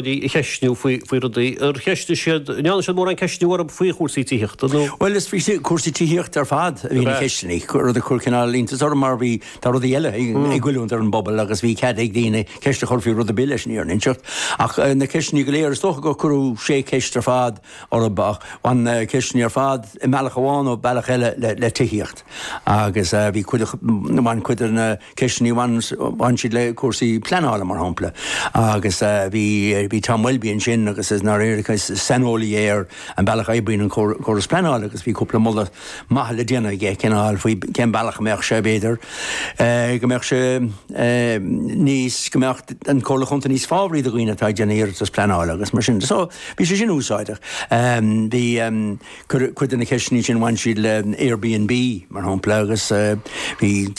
daoine a cheistniú faoi rudaí ar cheistigh siad, an ndearna siad mórán ceistniú orthu faoi chúrsaí tithíochta nó. Bhuel, is faoi chúrsaí tithíochta ar fad a bhí na ceisteanna, rud a chuir cineál iontas orm mar bhí, tá rudaí eile ag goilliúint ar an bpobal agus bhí cead ag daoine ceist a chur faoi rud ar bith leis an fhírinne a inseacht. Ach na ceisteanna go léir, is dócha gur cuireadh sé cheist ar fad orthu ach bhain na ceisteanna ar fad i mbealach amháin nó bealach eile le tithíocht. agus bhí cuid de, bhain cuid de na ceisteanna, bhain siad le cúrsaí pleanála mar shampla, agus bhí Tom Welby ansin agus i ndáiríre is saineolaí é ar an bealach a oibríonn an córas pleanála agus bhí cúpla moladh maith le déanamh aige cineál faoi cén bealach a mbeadh sé b'fhéidir go mbeadh sé níos, go mbeadh an Comhairle Chontae níos fábhraí do dhaoine atá ag déanamh iarratas pleanála agus mar sin. So bhí sé sin úsáideach. Bhí Cuid de na ceisteanna sin, bhain siad le Airbnb, mar shampla, agus bhí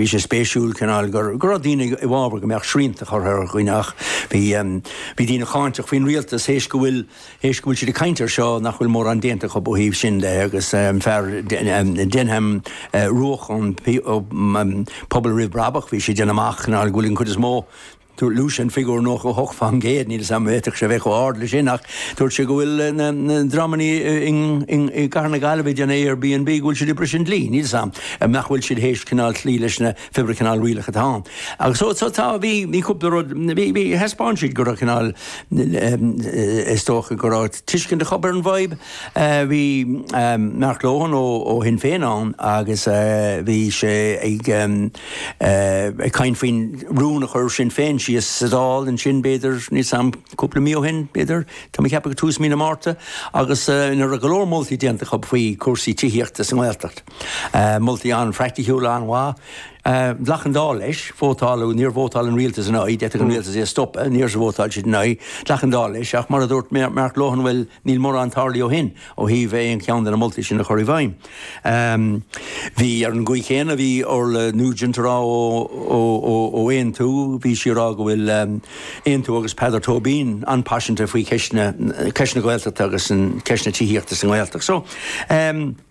sé spéisiúil cineál go raibh daoine i bhfabhar go mbeadh srianta curtha ar dhaoine ach bhí daoine cáinteach faoin rialtas théis go bhfuil, théis go bhfuil siad ag caint air seo nach bhfuil mórán déanta acu ó thaobh sin de agus an fear Denman Rooke ón Pobal Roimh Bhrabach bhí sé ag déanamh amach cineál go bhfuil an chuid is mó Luaigh sé an figiúr 98%, níl 's agam an bhféadfadh sé a bheith chomh ard leis sin ach dúirt sé go bhfuil na dreamannaí i gcathair na Gaillimhe ag déanamh Airbnb go bhfuil siad ag briseadh an dlí. Níl 's agam nach bhfuil siad théis cineál cloí leis na fébrí cineál rialacha atá ann. Agus so so tá, bhí bhí cúpla rud, bhí bhí thaispeáin siad go raibh cineál is dócha go raibh tuiscint acu ar an bhfadhb. Bhí Mark Lohan ó ó Shinn Féin ann agus bhí sé ag ag caint faoin rún a chuir Sinn Féin síos sa Dáil ansin b'fhéidir níl 's agam cúpla mí ó shin b'fhéidir tá mé ag ceapadh ag tús mí na Márta agus ina raibh go leor moltaí déanta acu faoi chúrsaí tithíochta sa nGaeltacht. Moltaí an-phraiticiúla an-mhaith. Ghlac an Dáil leis, vótáladh, níor vótáil an Rialtas ina aghaidh, d'fhéadfadh an Rialtas é a stopadh, níor vótáil siad ina aghaidh, ghlac an Dáil leis ach mar a dúirt Mark Lohan bhuel níl mórán tarlaithe ó shin. ó thaobh aon cheann de na moltaí sin a chur i bhfeidhm. Bhí, ar an gcaoi chéanna, bhí Orla Nugent a rá ó Aontú, bhí sí a rá go bhfuil Aontú agus Peadar Tóibín an-paiseanta faoi cheist na Gaeltachta agus ceist na tithíochta sa nGaeltacht.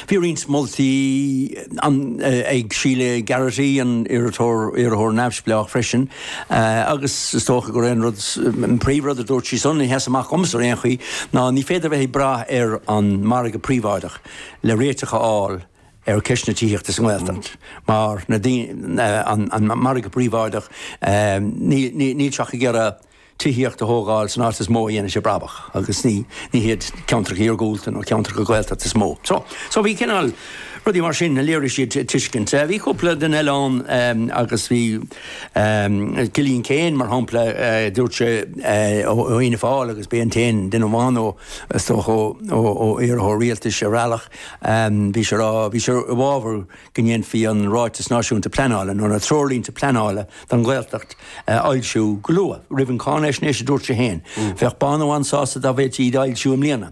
Bhí roinnt moltaí ann ag Sheila Garrity, an iarrthóir neamhspleách freisin, agus is dócha gur é an rud, an príomhrud a dúirt sí sin a sheas amach dhomsa ar aon chaoi ná ní féidir a bheith ag brath ar an margadh príobháideach le réiteach a fháil ar cheist na tithíochta sa nGaeltacht mar an margadh príobháideach, níl sé ach ag iarraidh. tithíocht a thógáil san áit is mó a dhéanann sé brabach agus ní ní hiad ceantracha iargúlta nó ceantracha Gaeltachta is mó. So so bhí cineál rudaí mar sin a léirigh siad tuiscint. Eh bhí cúpla duine eile ann eh agus bhí eh Cillian Keane mar shampla eh dúirt sé eh ó ó Fhianna Fáil agus b'é an t-aon duine amháin ó is dócha ó ó ó iarrthóir rialtais ar bhealach eh bhí sé a rá bhí sé i bhfabhar go ndéanfaí an Ráiteas Náisiúnta Pleanála nó na Treoirlínte Pleanála don Ghaeltacht a fhoilsiú go luath, roimh an cháinaisnéis, a dúirt sé féin. Bheadh Bánú an-sásta dá bhféadfaí iad a fhoilsiú i mbliana.